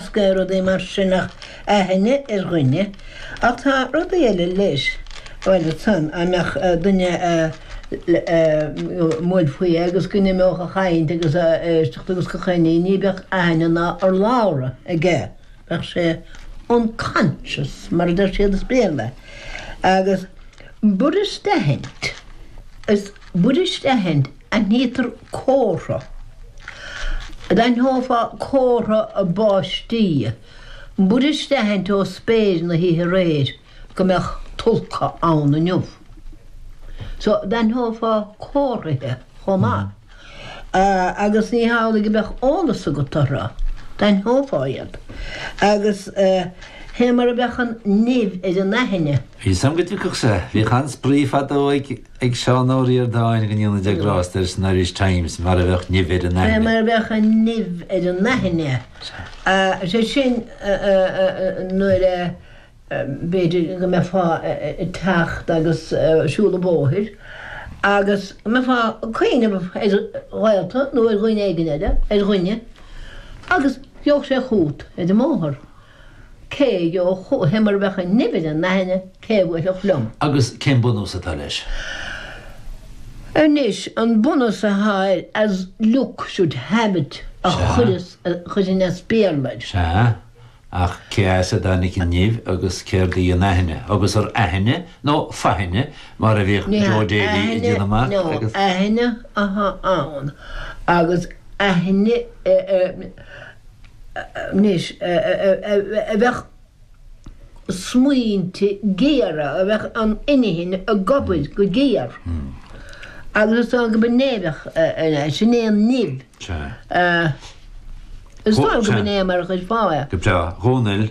Scaoil rudaí mar sin ach aithne ar dhuine. Ach tá rudaí eile leis. Bhuel, ansan, dá mbeadh duine i mbéal báis agus go n-imeodh a chaint agus a éisteacht agus go háirithe, ní bheadh aithne ná urlabhra aige. Bheadh sé unconscious, mar a deir siad as Béarla. Agus b'fhuirist a aithint, b'fhuirist a aithint Aithnítear comhartha. D'aithneofá comhartha báistí, b'fhuirist a aithint ó spéir na hoíche aréir go mbeadh tulca ann inniu. So, d'aithneofá comharthaithe chomh maith. Agus ní hamhlaidh go mbeadh eolas agat orthu, d'aithneofá iad. Agus fé mar a bheadh an nimh ar an aithne. Bhí fhios a'm go dtiocfadh sé. Bhíodh an-spraoi fadó ag. ag Seán Ó Ríordáin go ndéana Dia grásta air san Irish Times mar a bheadh nimh ar an aithne. mar a bheadh an nimh ar an aithne, is é sin nuair a, b'fhéidir, go mbeifeá ag teacht agus siúl an bhóthair agus go mbeifeá ag cuimhneamh ar ghaolta nó ar dhuine éigin eile, ar dhuine, agus gheobhadh sé chút ar an mbóthar. Cé a gheobhadh chúm mar a bheadh an nimh ar an aithne, cé a bhuailfeadh liom. Agus cén bunús atá leis? Anois, an bunús atá air as luck should have it a chuireas, a chuirfinn as Béarla air. Sea, ach cé as a dtáinig an nimh agus céard í an aithne? Agus arb aithne nó faithne mar a bhíodh Joe Daly ag déanamh amach? Ní hea, aithne atá ann agus aithne. anois, a bheadh smaointe géara, a bheadh an inchinn ag gobadh go géar, agus iad san go binibeach, sin é an nimh. Is dócha go b'in é mar a chuirfeá é. Go breá. A Dhomhnaill.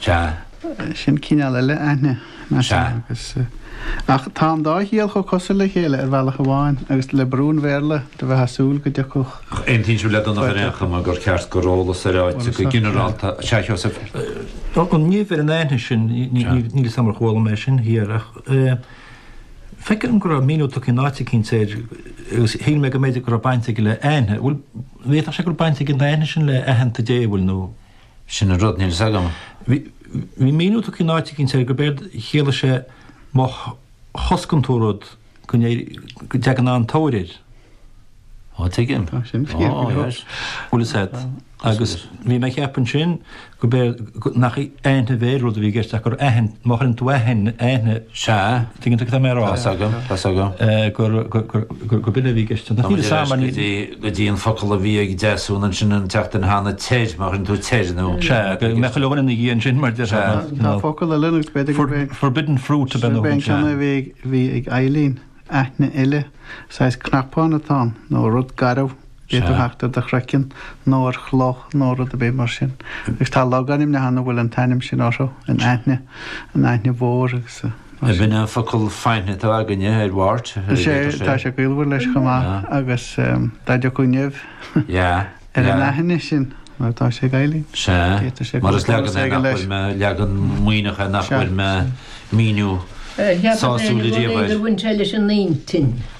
Sea. Sin cineál eile aithne, nach ea? Agus, ach tá an dá chiall chomh cosúil le chéile ar bhealach amháin, agus le brú an Bhéarla, bheifeá ag súil go dtiocfadh. Ach an aontaíonn sibh le Donncha ar aon chuma gur ceart gur eolas ar áit go ginearálta, sea, Sheosaimh? An nimh ar an aithne sin, níl 'fhios a'm ar chuala mé sin thiar, ach feictear dom go raibh míniú tugtha in áit eicínt air agus shíl mé go mb'fhéidir go raibh baint aige le aithne. Bhfuil, an bhféadfadh sé go raibh baint ag an aithne sin le aitheanta Dé, bhfuil, nó? Sin an rud, níl fhios agam. Bhí míniú tugtha in áit eicínt air gurb éard a chiallaigh sé má choscann tú rud go dteagann an-tóir air. Á, tuigim. Tá sin fíor go leor. Bhuel is ea. Agus bhí mé ag ceapadh ansin gurb éard, nach aithne a bheith ar rud a bhí i gceist ach gur aithne, má chuireann tú aithne, aithne. Sea. Tuigeann tú cad tá mé ag rá? Tá's agam, tá's agam. gur, gur, gur, gur, gur b'in a bhí i gceist. Táimid ag rá go dtí, go dtí an focal a bhí ag Deasún ansin an tseachtain cheana, teir, má chuireann tú teir nó. Sea, go mbeadh a ligint ina dhiaidh ansin mar deir sé. Tá focal eile nó b'fhéidir go mbeidh. Forbidden fruit ab in. B'in ceann a bhí ag Eibhlín, aithne eile, saghas cnapán atá ann nó rud garbh. d'fhéadfadh a theacht ar do chraiceann nó ar chloch nó rud ar bith mar sin. Agus tá logainmneacha ann a bhfuil an t-ainm sin orthu, an Aithne, an Aithne Mhór agus mar sin. An bhfuil an focal faithne atá againne ar wart? Is é, tá sé gaolmhar leis chomh maith agus dá ndéarfá nimh ar an aithne sin mar atá sé i nGaillimh, d'fhéadfadh sé go mbeadh baint aige leis. Mar is leagan é nach bhfuair mé, leagan Muimhneach é nach bhfuair mé míniú sásúil ariamh air. Cheapas-sa go raibh sé ag baint leis an intinn.